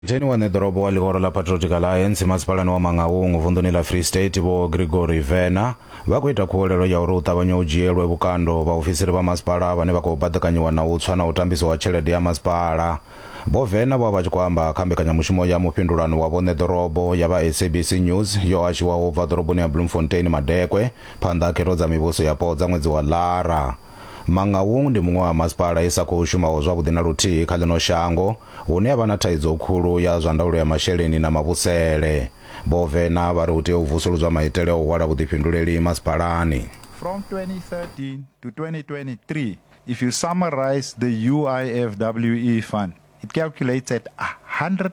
Theni wa ṋeḓorobo wa ḽihoro ḽa Patriotic Alliance masipalani wa Mangaung vunḓuni ḽa Free State Vho Gregory Vena vha khou ita khuwelelo ya uri hu ṱavhanye hu dzhielwe vhukando vhaofisiri vha masipala vhane vha khou baḓekanyiwa na u tswa na u tambiswa ha tshelede ya masipala. Vho Vena vho vha vha tshi khou amba kha mbekanyamushumo ya mufhindulano wa vho ṋeḓorobo ya vha SABC News yo hashiwaho u bva ḓoroboni ya Bloemfontein Madekwe phanḓa ha khetho dza mivhuso yapo dza ṅwedzi wa Ḽara. Mangaung ndi muṅwe wa masipala i sa khou shumaho zwavhuḓi na luthihi kha ḽino shango hune ha vha na thaidzo khulu ya zwa ndaulo ya masheleni na mavhusele. Vho Vena vha ri hu tea u vusuludzwa maitele a u hwala vhuḓifhinduleli masipalani. From 2013 to 2023, if you summarise the UIFWE fund, it calculates at 100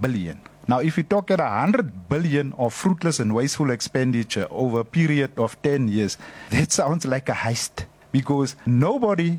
billion. Now if you talk at 100 billion of fruitless and wasteful expenditure over a period of 10 years, that sounds like a heist because nobody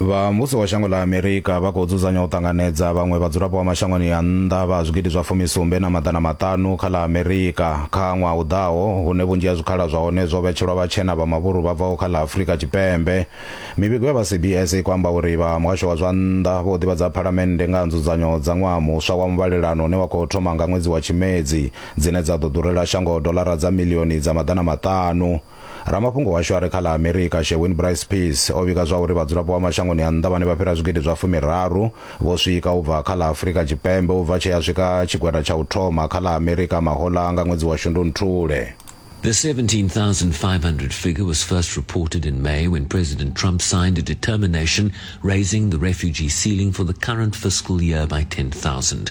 Vha muvhuso wa shango ḽa Amerika vha khou dzudzanya u ṱanganedza vhaṅwe vhadzulapo vha mashangoni a nnḓa vha zwigidi zwa fumisumbe na maḓana maṱanu kha ḽa Amerika kha ṅwaha u ḓaho, hune vhunzhi ha zwikhala zwa hone zwo vhetshelwa vhatshena vha mavhuru vha bvaho kha ḽa Afurika Tshipembe. Mivhigo ya vha CBS i khou amba uri vha muhasho wa zwa nnḓa vho ḓivhadza phalamennde nga ha nzudzanyo dza ṅwaha muswa wa muvhalelano une wa khou thoma nga ṅwedzi wa Tshimedzi, dzine dza ḓo ḓurela shango doḽara dza miḽioni dza maḓana maṱanu. ramafhungo washu a re kha ḽa amerika sherwin bryce peace o vhiga zwauri vhadzulapo vha mashangoni a nnḓa vhane vha fhira zwigidi zwa fumiraru vho swika u bva kha ḽa afurika tshipembe u bva tshe ya swika tshigwada tsha u thoma kha ḽa amerika mahoḽa nga ṅwedzi wa shundunthule The 17,500 figure was first reported in May when President Trump signed a determination raising the refugee ceiling for the current fiscal year by 10,000.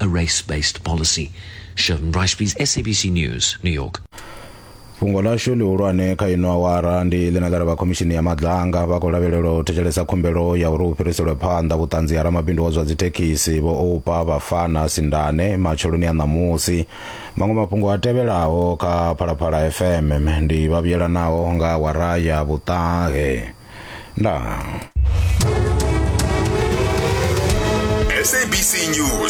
a race based policy. Sheldon Ricebees, SABC News, New York. fhungo ḽashu ḽihulwane kha ino awara ndi ḽine ḽa ri vha khomishini ya madlanga vha khou lavhelela u thetshelesa khumbelo ya uri hu fhiriselwe phanḓa vhuṱanzi ha ramabindu wa zwa dzithekhisi vho oupa vhafana sindane matsheloni a ṋamusi maṅwe mafhungo a tevhelaho kha phalaphala fm ndi vha vhuyelanaho nga awara ya vhuṱahe ndaa SABC News.